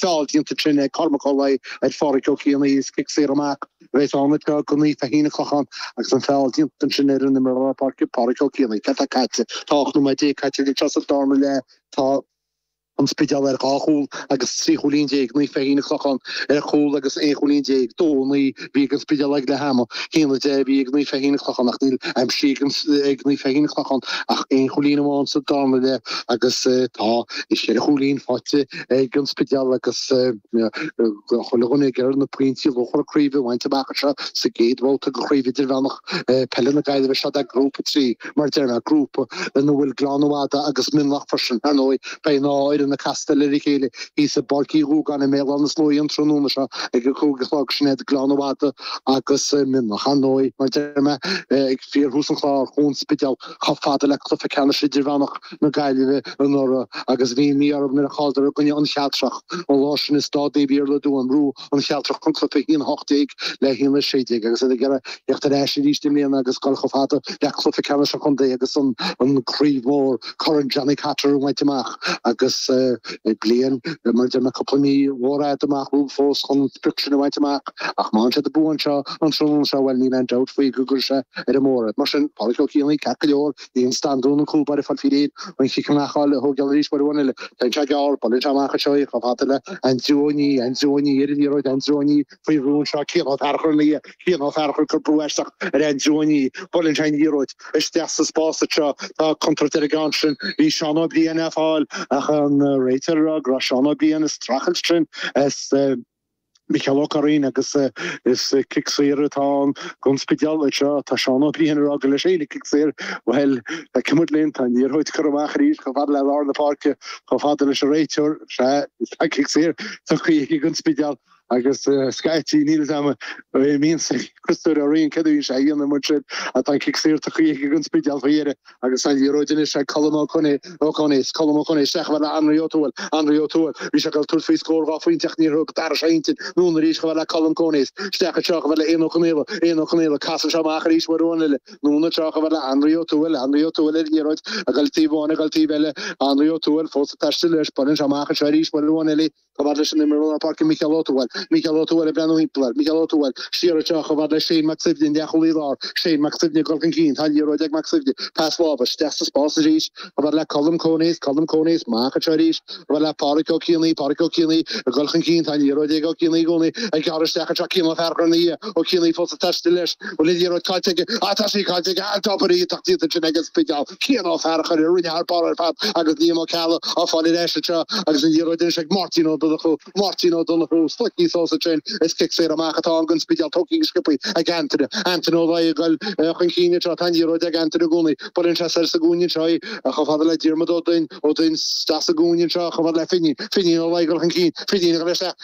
feall déanta ansin ag Cormac Ó Laoi ar Phádraig Ó Cianaí is cic saor amach bheas ann ag Naomh Feichín An Clochán agus an feall déanta ansin ar an imreoir lár páirce Pádraig Ó Cianaí. Céard tá caite? Tá ocht nóiméad déag caite go dtí seo sa dárna leath. Tá An Spidéal ar dhá chúl agus trí chúilín déag, Naomh Feichín An Clochán ar chúl agus aon chúilín déag. Dó, naoi a bhí ag an Spidéal ag leath ama, haon a deich a bhí ag Naomh Feichín An Clochán ach níl aimsithe ag Naomh Feichín An Clochán ach aon chúilín amháin sa dárna leath agus tá ceithre chúilín faighte ag an Spidéal agus chuile dhuine ag iarraidh na pointí luachmhara craoibhe a bhaint amach anseo sa gcéad bhabhta de Chraobh Idirmheánach Peile na Gaillimhe. Seo é grúpa trí, mar a deir mé, grúpa ina bhfuil Gleann na Madadh agus Mionlach freisin. Ar ndóigh, beidh an dá fhoireann ag castáil ar a chéile thíos i bPáirc Uí Dhúgáin i mBéal Átha na Sluaighe an tráthnóna seo ag a cúig a chlog. Sin iad Gleann na Madadh agus Mionlach, ar ndóigh, mar a deir mé, ag fíorthús an chláir, chuaigh An Spidéal. chomh fada le cluiche ceannais idirmheánach na Gaillimhe anuraidh agus bhí an mí-ádh orthu nuair a chailleadar i gcoinne An Chealtrach an lá sin i Staid Naomh Iarlaith i dTuaim. Bhuaigh An Chealtrach an cluiche 1-18 le 1-16 agus iad ag iarraidh theacht ar ais arís i mbliana agus dul chomh fada le cluiche ceannais an chontae agus an Chraobh Mhór, Corn Johnny Cotter, a bhaint amach agus bliain, mar a deir mé cúpla mí, mhór fhada amach rompu fós chun an sprioc sin a bhaint amach. Ach má fhaigheann siad an bua anseo. an tráthnóna seo, bhuel, níl aon dabht faoi go gcuirfidh sé ar an mbóthar iad. Mar sin, Pádraic Ó Cianaí, ceart go leor, bhí an Standún, an cúlbáire, ag fáil faoi réir, an cic amach a fháil, a thógáil arís uair amháin eile. Téann sé gearr, buaileann sé amach anseo é, chomh fada le Aindriú Ó Niaidh, Aindriú Ó Niaidh ar an liathróid, Aindriú Ó Niaidh faoi bhrú anseo, Cian Ó Fearchair ina dhiaidh, Cian Ó Fearchair ag cur brú aisteach ar Aindriú Ó Niaidh, buaileann sé an liathróid isteach sa spás anseo, tá contúirt ar an gceann sin, bhí Seán Ó Briain á fáil ach an réiteoir ag rá go raibh Seán Ó Briain ag streachailt ansin, is. Micheál Ó Curraoin agus is cic saor atá ann don Spidéal anseo. Tá Seán Ó Criomhthain ag rá gur leis féin an cic saor, bhuel, tá muid ag imirt linn, tá an liathróid curtha amach arís chomh fada le lár na páirce, chomh fada leis an réiteoir. Sea, tá cic saor tugtha aige don Spidéal agus scaití níl fhios agam an mbíonn Críostóir Ó Riain, céard a bhíonn sé a dhéanamh, mar sin tá an cic saor tugtha aige don Spidéal faoi dheireadh. Agus an liathróid anois ag Colm Ó Con, Coneys, Colm Coneys isteach chomh fada le Anraí Ó Tuathail, Anraí Ó Tuathail, bhí sé ag dul tabhairt faoi scór dhá phointe ach níor thug, d'athraigh sé a intinn, anonn arís chomh fada le Colm Coneys, isteach anseo chomh fada le Eoghan Ó Conaola, Eoghan Ó Conaola, casann sé amach arís uair amháin eile, anonn anseo chomh fada le Anraí Ó Tuathail, Anraí Ó Tuathail ar an liathróid ag dul taobh amháin ag dul taobh eile, Anraí Ó Tuathail fós ag taisteal leis, buaileann sé amach anseo arís uair amháin eile, Chomh fada leis an imreoir lár páirce Micheál Ó Tuathail, Micheál Ó Tuathail ag breathnú thimpeall air, Micheál Ó Tuathail, siar anseo chomh fada le Shane Mac Suibhne, an leathchúlaí láir, Shane Mac Suibhne ag dul chun cinn, tá an liathróid ag Mac Suibhne, pas láimhe, isteach sa spás arís, chomh fada le Colm Coneys, Colm Coneys, amach anseo arís, chomh fada le Pádhraic Ó Cianaí, Pádhraic Ó Cianaí ag dul chun cinn, tá an liathróid ag Ó Cianaí i gcónaí, ag gearradh isteach anseo, Cian Ó Fearchair ina dhiaidh, Ó Cianaí fós ag taisteal leis, Bhuel, an liathróid caillte aige, ach tá sé caillte aige, an-obair iontach déanta ansin ag an Spidéal. Cian Ó Fearachair a rinne thar barr ar fad agus Liam Ó Ceallaigh á fáil ar ais anseo agus an liathróid anois ag Máirtín Ó Donnchú. Máirtín Ó Donnchú, Stuic níos os ansin is cic saor amach atá ann don Spidéal tógtha go sciobtha ag Antaine. Antaine Ó Laoi ag goil chun cinn anseo. Tá an liathróid ag Antaine i gcónaí. Buaileann sé soir sa gcúinne anseo í, chomh fada le Diarmaid Ó Doinn. Ó Doinn isteach sa gcúinne anseo chomh fada le Finín. Finín Ó Laoi ag goil chun cinn. Finín ag goil isteach.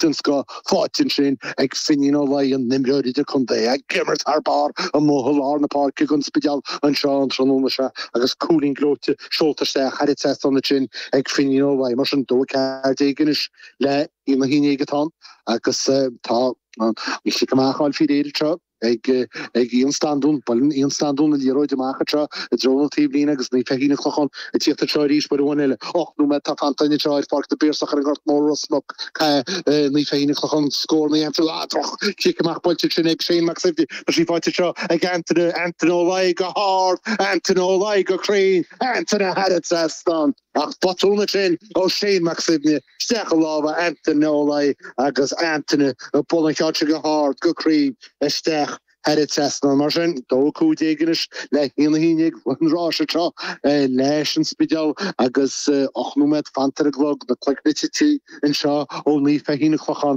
den scoth faighte ansin ag Finín Ó Laoi, an t-imreoir idir-chontae ag imirt thar barr amuigh i lár na páirce ag An Spidéal anseo an tráthnóna seo agus cúilín gleoite seolta isteach thar an trasnán ansin ag Finín Ó Laoi. Mar sin, 2 14 anois le haon a haon déag atá ann agus tá an chic amach ann fíor-éileamh anseo. ag Iain Standún. Buaileann Iain Standún an liathróid amach anseo i dtreo na taobhlíne agus Naomh Feichín an Chlocháin ag tíocht anseo arís. Uair amháin eile, ocht nóiméad atá fanta anseo ar Pháirc na bPiarsach ar an nGort Mór, Ros Muc. Naomh Feichín an Chlocháin scór na dhéanfaí. Ah, droch chic amach buailte ansin ag Shane Mac Suibhne. Tá sí faighte anseo ag Antaine, Antaine Ó Laoi go hard, Antaine Ó Laoi go cruinn, Antaine thar an trasnán. Ach botún ansin ó Shane Mac Suibhne isteach i lámha Antaine Ó Laoi agus Antaine ag bualadh an cheann sin go hard, go cruinn isteach thar an trasnán. Mar sin, dó a cúig déag anois le haon a haon déag an rás anseo leis an Spidéal agus ocht nóiméad fanta ar an gclog, na cloigne tite anseo ó Naomh Feichín an Chlocháin.